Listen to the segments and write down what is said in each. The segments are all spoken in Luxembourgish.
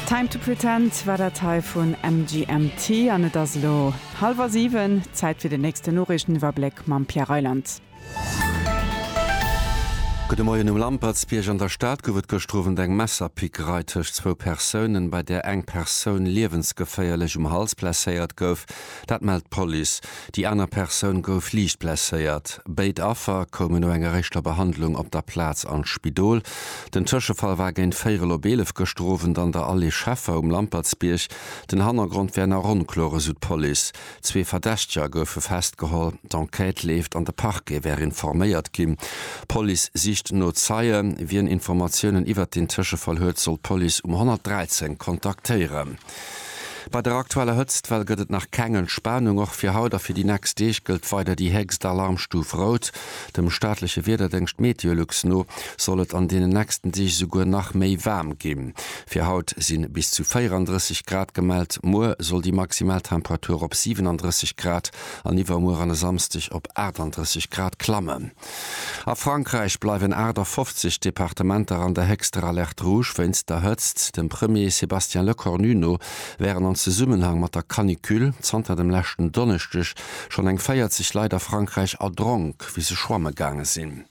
Time to Pretend war dat hei vun MGMT an et ass elo hallwer 7, Zäit fir den nächsten Noriichteniwwerbléck mam Pierre Reyland. Gudde Moien. Um Lampertsbierg an der Stad gouf et gëschter Owend eng Messerpickerei tëscht zwou Persounen, bei där eng Persoun liewensgeféierlech um Hals blesséiert gouf. Dat mellt d'Police. Déi aner Persoun gouf liicht blesséiert. Béid Affer koumen no enger éischter Behandlung op der Plaz an d'Spidol. Den Tëschefall war géint véierel op eelef gëschter Owend an der Allée Scheffer um Lampertsbierg. Den Hannergrond wär nach onkloer, esou d'Police. Zwee Verdächteger goufe festgeholl. D'Enquête leeft an de Parquet wär informéiert ginn. D'Police sicht no Zeien. Wien Informatiounen iwwert den Tëschefall huet, soll d'Police um 113 kontaktéieren. Bei der aktueller Hëtztwell gëtt et nach keng Entspanung. Och fir haut a fir déi nächst Deeg gëllt weider déi héchst Alarmstuf Rout. Dem staatleche Wiederdéngscht Meteolux no soll et an deenen nächsten Deeg esouguer nach méi waarm ginn. Fir haut si bis zu 34 Grad gemellt, muer soll déi maximal Temperatur op 37 Grad an iwwermuer an e Samsdeg op 38 Grad klammen. A Frankräich bleiwen 58 Departementer an der héchster Alerte rouge wéinst der Hëtzt. Dem Premier Sébastien Lecornu no wären an Zesummenhang mat der Canicule zanter dem leschten Donneschdeg schonn eng 40 Leit a Frankräich erdronk, wéi se schwamme gaange sinn.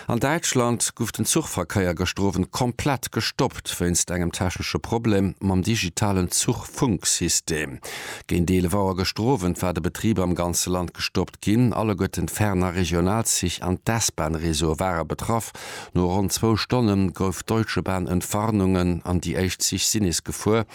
An Däitschland guff den Zuchverkeier gëschter Owend komplett gestoppt wéinst engem technesche Problem mam digitalen Zuchfunksystem. Géint 11 Auer gëschter Owend war de Betrib am ganze Land gestoppt. Ginn alleguerten d'Ferner Regionalzich an d'S-Bahn-Réseaue ware betraff. No ronn zwou Stonne gouf d'Deutsche Bahn Entwarnungen an déi éischt Zich si nees gefuer.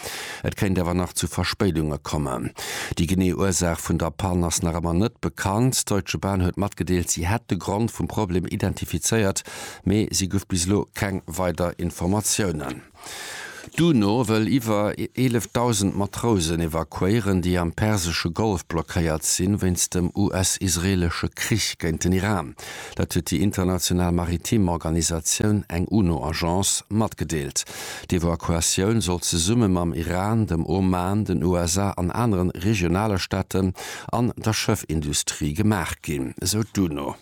Et kéint awer nach zu Verspéidunge kommen. Déi genee Ursaach vun der Pann ass nach ëmmer net bekannt. D'Deutsche Bahn huet matgedeelt, si hätt de Grond vum Problem identifizéiert, mee si gouf bis elo keng weider Informatiounen. D'UNO wëll iwwer 11.000 Matrousen evakuéieren, déi am persesche Golf blockéiert sinn, wéinst dem US-israeelesche Krich géint den Iran. Dat huet déi international maritim Organisatioun, eng UNO-Agence, matgedeelt. D'Evakuatioun soll zesumme mam Iran, dem Oman, den USA an anere regionale Staaten an der Schëffindustrie gemaach ginn, esou d'UNO.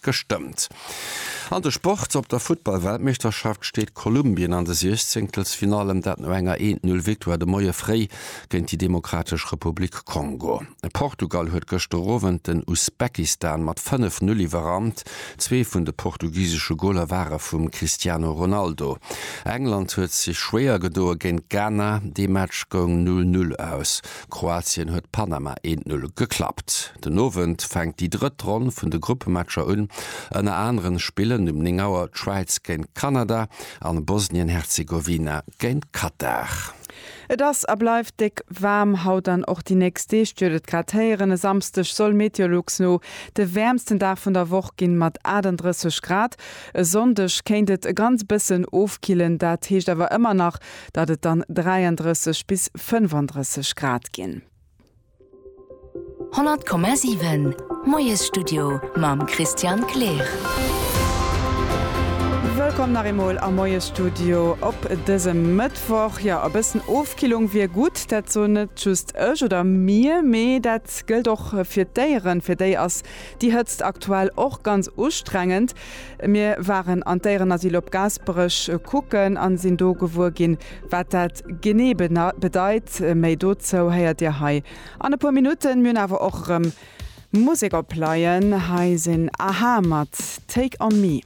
gestëmmt. An de Sport, Op der Futtball-Weltmeeschterschaft steet Kolumbien an de Siechzenkelsfinallen, dat no enger 1-0 Victoire de Moie fréi géint déi Demokratesch Republik Kongo. Portugal huet gëschter Owend den Usbekistan mat 5-0 iwwerrannt, zwee vun de portugisesche Goler ware vum Cristiano Ronaldo. England huet sech schwéier gedoe géint Ghana, dee Match goung 0-0 aus. Kroatien huet Panama eent Null geklappt. Den Owend fänkt déi drëtt Ronn vun de Gruppematcher un. Ënner aneren spillen um 9 Auer d'Schwäiz géint Kanada an Bosnien-Herzegowina géint Katar. Et ass a bleift déck waarm haut an och déi nächst Deeg duert et grad héieren. E Samsdeg soll Meteolux no de wäermsten Dag vun der Woch ginn, mat 38 Grad. E Sonndeg kéint et e ganz bëssen ofkillen, dat heescht awer ëmmer nach datt et dann 33 bis 35 Grad ginn. 100,7 Moiesstudio mam Christian Kleer. Wëllkomm nach eemol am Moiesstudio op dësem Mëttwoch. Jo, e bëssen Ofkillung wier gutt. Dat soen net just ech oder mir, mee dat gëllt och fir d'Déieren. Fir déi ass déi Hëtzt aktuell och ganz ustrengend. Mir waren an d'Déierenasyl op Gaasperech kucken an sinn do gewuer ginn wat dat genee bedeit. Méi dozou héiert dir hei an e puer Minutten. Mir hunn awer och erëm Musek op Laien. Hei sinn a-ha mat Take on me.